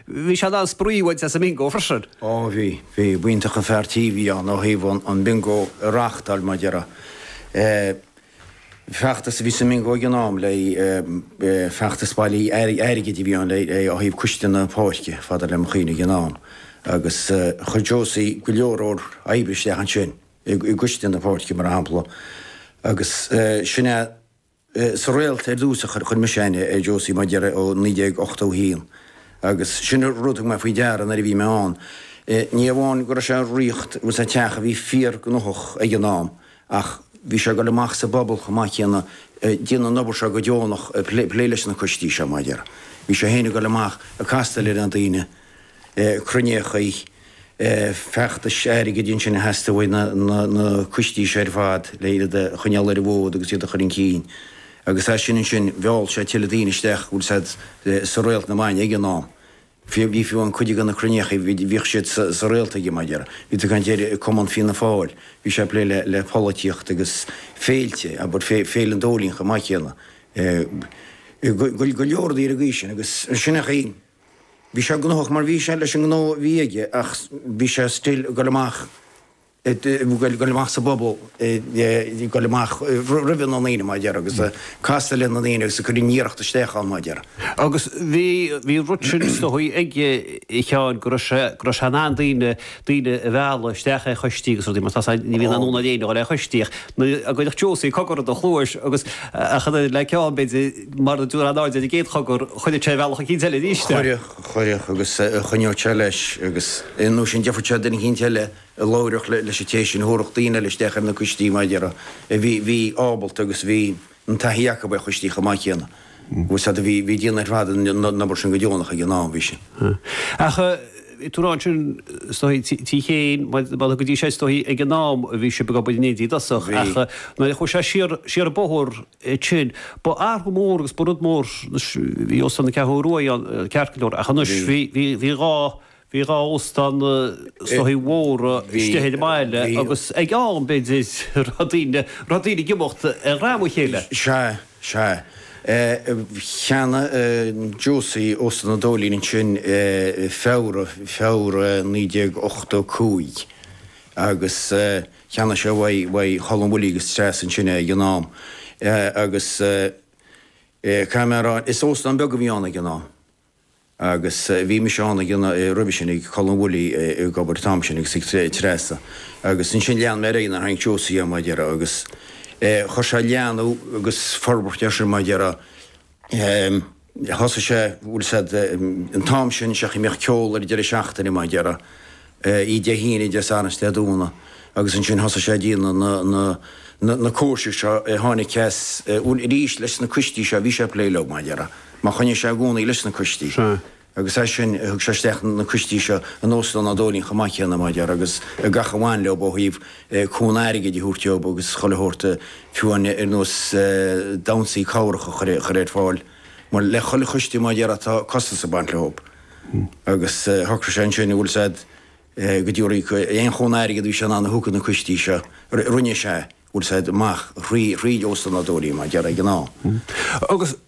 Bhí siad in ann spraoi a bhaint as an mBingo freisin. Ó bhí, bhí. B'iontach an fear tí a bhí ann ó thaobh an Bingo a reáchtáil mar a déarfá feachtas a bhí sa mBingo ag an am le feachtas bailí airgid a bhí ann le ó thaobh coiste na páirce, fada le mo chuimhne ag an am agus chuir Josie go leor leor oibre isteach ansin i gcoiste na páirce mar shampla agus sin a. Eh, sa Réalt ar dtús a chuir mise aithne ar Josie Maguire ó 1981 agus sin rud a thug mé faoi deara nuair a bhí mé ann. Eh, ní amháin go raibh sé ag rith agus an teach a bhí fíorghnóthach ag an am ach bhí sé ag dul amach sa bpobal chomh maith céanna, eh, ag déanamh an obair seo go deonach, eh, plé leis na coistí seo, mar a déarfá. Bhí sé féin ag dul amach ag castáil ar na daoine. cruinneochaí feachtais airgid ansin a theastaigh ó na coistí seo ar fad le iad a choinneáil ar an bhfód agus iad a chur chun cinn. Agus as sin ansin, mheall sé tuilleadh daoine isteach aige féin sa Réalt na Maidine ag an am. Bhí fiú an cuid de na cruinneochaí, bhíodh siad sa Réalt aige, mar a déarfá. Bhí tú ag caint ar Chumann Fianna Fáil, bhí sé ag plé le polaitíocht agus féilte, abair, Féile an Dóilín chomh maith céanna. Go leor daoine ag aois sin agus sin é an chaoi. Bhí sé gnóthach mar bhí sé leis an ngnó a bhí aige ach bhí sé still ag dul amach, ag dul amach sa bpobal, ag dul amach roimhe na ndaoine mar a déarfá agus ag castáil le na ndaoine agus ag cur an iarracht isteach ann mar a déarfá. Agus bhí, bhí an rud sin is dóigh a Sheáin go raibh sé, go raibh sé in ann daoine, daoine a mhealladh isteach ar choistí agus rudaí mar tá sé, ní bhíonn aon fhonn ar aon duine dul ar choistí ach nuair a chuirfeadh Josie cogar i do chluais agus ach an oiread leis an gceann b'fhéidir, mura dtabharfá aon aird ar an gcéad chogar, chuirfeadh sé a bhealach eicínt eile arís. Chuirfeadh, chuirfeadh, agus choinneodh sé leis, agus nó sin déarfadh sé le duine eicínt eile a labhródh leis an té sin, chuirfeadh daoine eile isteach ar na coistí, mar a déarfá, a bhí, bhí ábalta agus bhí an taithí acu ar choistí chomh maith céanna. Agus iad ag déanamh ar fad an obair sin go deonach ag an am, bhí sin. Ach bhí tú ann sin, is dóigh, tí Chéin, mar a go dtí seo, is dóigh, ag an am a bhí sibh ag obair in éindí i dtosach, ach nuair a chuaigh sé siar, siar an bóthar, sin. Ba athrú mór agus ba rud mór, anois bhí Óstán na Ceathrún Rua ann, ceart go leor, ach anois bhí, bhí, bhí dhá, bhí dhá óstán sách mór istigh ar an mbaile agus ag an am, b'fhéidir, raibh daoine, raibh daoine ag imeacht eatarthu le chéile. Sea, sea. Cheannaigh Josie Óstán an Dóilín ansin Feabhra, Feabhra 1985 agus Cheannaigh sé uaidh uaidh Cholm Willie agus Treasa ansin é ag an am agus caithfidh mé a rá, is óstán beag a bhí ann ag an am agus bhí mise ann ag an, roimhe sin ag Colm Willie ag obair an t-am sin agus ag Treasa agus ansin lean mé ar aghaidh nuair a cheannaigh Josie é mar a déarfá agus chuir sé leathnú agus forbairt ar sin mar a déarfá. Thosaigh sé, bhfuil a fhios agat, an t-am sin seachas go mbíodh ceol ar deireadh seachtaine mar a déarfá, Dé hAoine, Dé Sathairn, Dé Domhnaigh agus ansin thosaigh sé ag déanamh na, na, na, na coistí seo, tháinig ceas, bhuail arís leis na coistí seo, bhí sé ag plé leob mar a déarfá, mar choinnigh sé i gcónaí leis na coistí agus as sin thug sé isteach na coistí seo in Óstán an Dóilín chomh maith céanna mar a déarfá agus gach a bhain leob ó thaobh cúnamh airgid a thabhairt dóib agus chuile shórt a fiú amháin ar nós damhsaí cabhrach a chur ar fáil, mar le chuile choiste mar a déarfá tá costas ag baint leob. Agus shocraigh sé ansin bhfuil a fhios agat, go dtí aon chúnamh airgead a bhí sé in ann a thabhairt do na coistí seo, rinne sé, bhfuil a fhios agat, amach thrí Óstán an Dóilín, mar a déarfá ag an am. Agus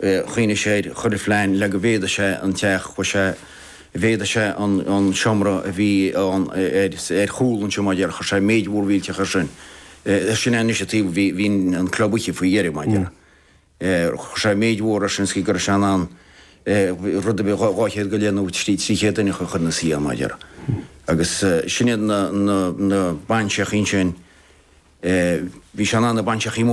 Choinnigh sé air chuile phlean le go bhféadadh sé an teach, chuir sé, mhéadaigh sé an, an seomra a bhí ann ar, ar chúl an tseomra, mar a déarfá, chuir sé méid mhór mhillteach air sin. Sin é an áit anois a raibh, bhí, bhí an club oíche faoi dheireadh, mar a déarfá. Chuir sé méid mhór air sin is go raibh sé in ann rud a bhí dhá, dhá chéad go leith nó trí, trí chéad duine a chur ina suí ann, mar a déarfá. Agus sin iad na, na, na bainseachaí ansin, bhí sé in ann na bainseachaí